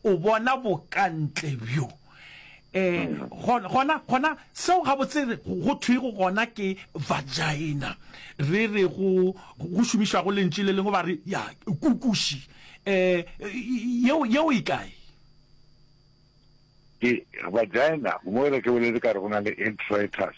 o bona bokantle bjo um gona gona seo gabotse go thwego gona ke vagina re re go go šomišwago lentši le lengwe ba re ya kukuši um yeo yeo e kae ke vagina mo re ke boletse ka re go na le introitus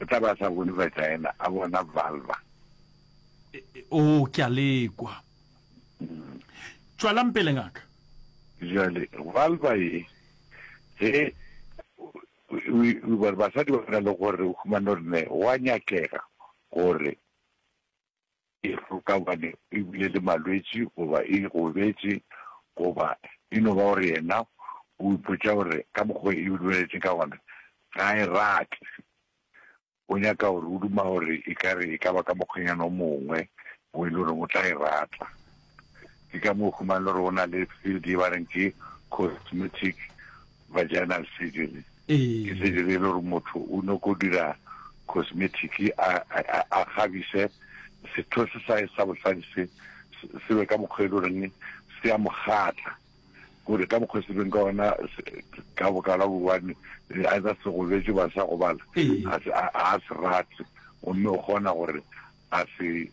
O tla be a sa bone vagina, a bona vulva. Oo, ke a lekwa. Tšwalang pele, ngaka. Bjale, vulva ye, ge basadi ba na le gore o humane gore ne wa nyakega gore e roka gobane e bile le malwetši goba e gobetše goba e no ba gore yena o ipotša gore ka mokgwa e dumeletšeng ka gona ga e rate o nyaka gore o duma gore e kare e ka ba ka mokgwenyana o mongwe o e le gore o tla e rata. Ke ka moo o humang le hore ho na le field e ba reng ke cosmetic vaginal surgery. Ke surgery e le hore motho o no ko dira cosmetic a a kgabise setho se sa sa bohladi se se be ka mokgwa e le reng se a mogatla gore ka mokgwa se beng ka ona ka bokala bobane a tsa se go betse ba sa gobala a se rate o mme o gona gore a se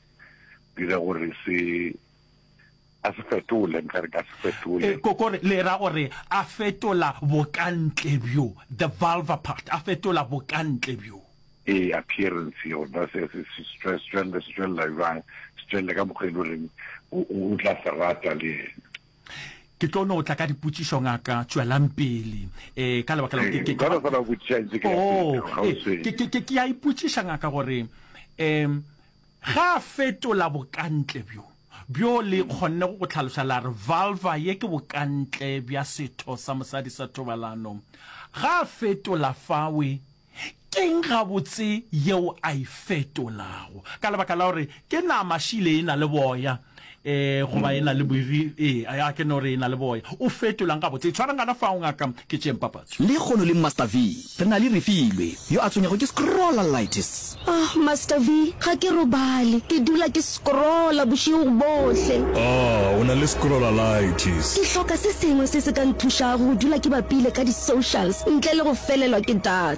dira gore se a se fetole nka re ka se fetole eh, kokore le ra gore a fetola bokantle bjo the vulva part a fetola bokantle bjo e appearance yona se se se tswelle se tswella jwang se tswelle ka mokgwa e le reng o tla se rata le yena ke tlo no tla ka dipotšišo ngaka tšwelang pele um ka lebaka eh, oh, eh, ke a ipotšiša ngaka gore um Ge a fetola bokantle bjo, bjo le kgonne go go hlaloša la re vulva, ye ke bokantle bja setho sa mosadi sa thobalano, ge a fetola fawe, keng gabotse yeo a e fetolago? Ka lebaka la gore ke nama, šile e na le boya. eh goba e na le boiri eh a ke no re e na le boya o fetolang ga botse tshwarang kana fa o ngaka ke tšeng papatso Le kgono le Master V re na le Refilwe yo a tshwenyago ke scrollalitis. Ah Master V ga ke robale ke dula ke scrolla bošego bohle. Ah o na le scrollalitis. Ke hloka se sengwe se se ka nthušago go dula ke bapile ka di socials ntle le go felelwa ke data.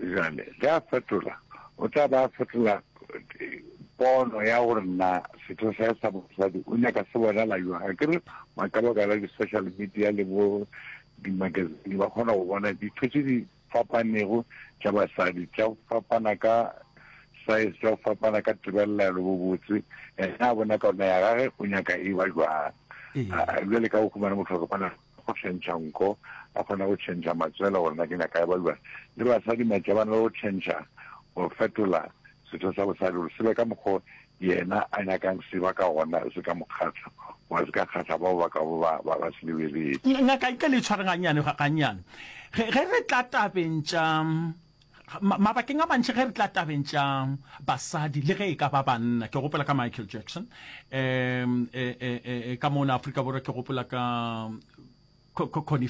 Bjale, ge a fetola, o tla be a fetola pono ya gore na setho sa sa bosadi o nyaka se bonala jwang. A ke re ba ka baka la di-social media le bo di-magazine ba kgona go bona ditho tse di fapanego tša basadi, tša go fapana ka size, tša go fapana ka tebelelo bobotse, ena a bona ka ona ya gage o nyaka e ba jwang. Ee. Bjale ka o khumane motho a ka bona go tšhentšha nko, ba kgona go tšhentšha matswele gore na ke nyaka ya baluana, le basadi matša ba na le go tšhentšha go fetola setho sa bosadi gore se be ka mokgo yena a nyakang se ba ka gona se ka mo kgahla goba se ka kgahla bao ba ka bo ba ba ba se lebeletse. Ngaka e ka le tshware gannyane gannyane ge re tla tabeng tša. Mabakeng a mantši ge re tla tabeng tša basadi le ge e ka ba banna, ke gopola ka Michael Jackson, um, e, e, e, ka mona Afrika Borwa ke gopola ka